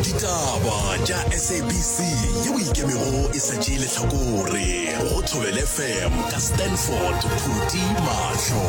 ditaba tša sabc yeo ikemego e sa tšee letlhakore go thobele fm ka stanford phuti mahlo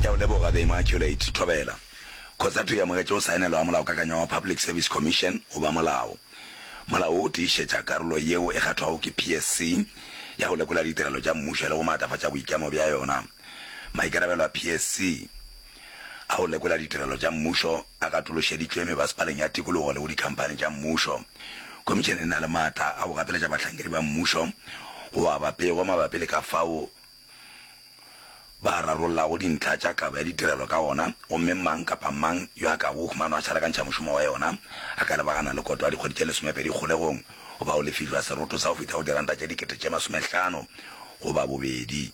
ke a o leboga the immaculate thobela kgotsato ya mogetše o saenelo wa molaokakanywa wa public service commission goba molao molao o tiišetša karolo yeo e kgathwago ke psc ya go lekola ditirelo tša mmušo le go maatlafatša boikemo bja yona maikarabelo a psc A go lekola ditirelo tša mmušo a katološeditšwe mebasepaleng ya tikologo le go dikhamphani tša mmušo. Khomišene e na le maatla a go gapeletša bahlankedi ba mmušo go aba pego mabapi le ka fao ba rarollago dintlha tša kabo ya ditirelo ka gona gomme mang kapa mang yo a ka go humanwa a šarakantšha mošomo wa yona a ka lebagana le koto ya dikgwedi tše lesomepedi kgolegong goba o lefišwa seroto sa go fihla go diranta tše dikete tše masomehlano goba bobedi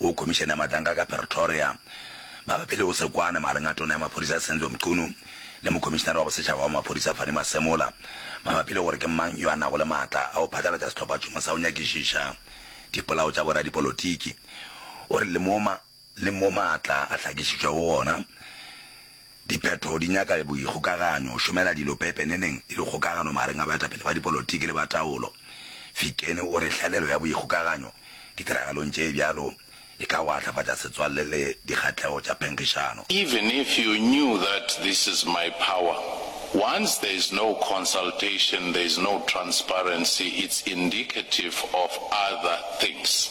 go Khomišene ya Matanga ka Pretoria mabapi le go se kwane magareng ga Tona ya Maphodisa Senzo Mchunu le Mokhomišenare wa Bosetšhaba wa Maphodisa Fannie Masemola mabapi le gore ke mang yo a nago le maatla a go phatlalatša sehlophatšhomo sa go nyakišiša dipolao tša boradipolotiki gore le mo le mo maatla a hlakišitšwego gona Diphetho di nyaka boikgokaganyo, go šomela dilo pepeneneng e le kgokagano magareng ga baetapele ba dipolotiki le ba taolo. Fikeni o re hlelelo ya boikgokaganyo ditiragalong tše bjalo e ka watlafatša setswalle le dikgahlego tša phenkgišano. Even if you knew that this is my power, once there is no consultation, there is no transparency, it's indicative of other things.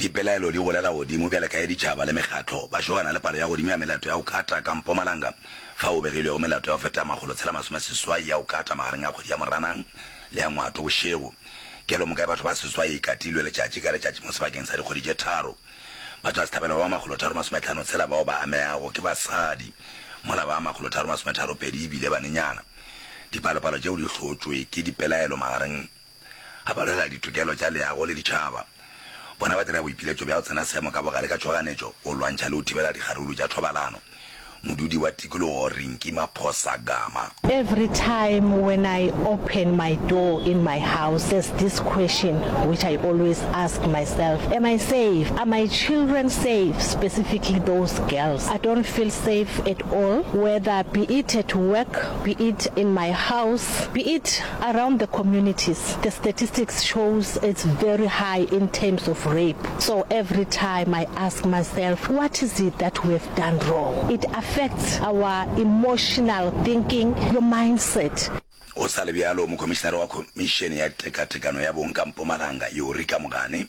Dipelaelo di golela godimo bjale ka ge ditšhaba le mekgatlo ba šogana le palo ya godimo ya melato ya go kata ka Mpumalanga, fao go begilwego melato ya go feta makgolo tshela masome seswai ya go kata magareng ga kgwedi ya Moranang le ya Ngwato bošego. Kelomoka ya batho ba seswai e katilwe letšatši ka letšatši mo sebakeng sa dikgwedi tše tharo. Batho ba sehlabelo ba makgolo tharo masome tlhano tshela bao ba amegago ke basadi, mola ba makgolo tharo masome tharo pedi e bile banenyana. Dipalopalo tšeo di hlotšwe ke dipelaelo magareng a ba lwela ditokelo tša leago le ditšhaba. Bona ba dira boipiletšo bja go tsena seemo ka bogare ka tšhoganetšo go lwantšha le go thibela dikgaruru tša thobalano. Modudi wa tikologo Rinki Maphosa Gama. Every time when I open my door in my house there's this question which I always ask myself, am I safe? Are my children safe? Specifically those girls. I don't feel safe at all whether be it at work, be it in my house, be it. Around the communities the statistics shows it's very high in terms of rape so every time I ask myself what is it that we have done wrong? It affects our emotional thinking, your mindset. Go sa le bjalo, Mokomišenare wa Khomišene ya Tekatekano ya Bong ka Mpumalanga, Yurika Mogane,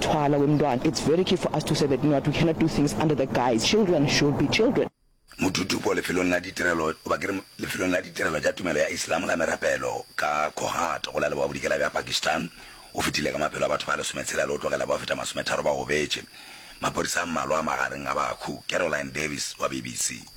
Thwala we mntwana, it's very key for us to say that not we cannot do things under the guise children should be children. Modudupo lefelong la ditirelo, goba ke re lefelong la ditirelo tša tumelo ya Islam la merapelo ka Kohat go la Leboa Bodikela bja Pakistan o fetile ka maphelo a batho ba lesometshela le go tlogela ba feta masometharo ba gobetše. Maphodisa a mmalwa a magareng ga bahu. Caroline Davies wa BBC.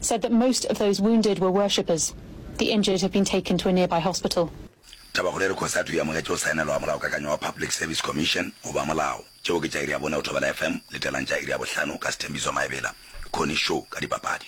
said that most of those wounded were worshippers. The injured have been taken to a nearby hospital. Tabakgolo e re Khosi a thwe e amogetše go saenelwa ga molaokakanyo wa Public Service Commission goba molao. Tšeo ke tša iri ya bone go Thobela FM. Letelang tša iri ya bohlano ka Sthembiso Maebela, Connie Show, ka dipapadi.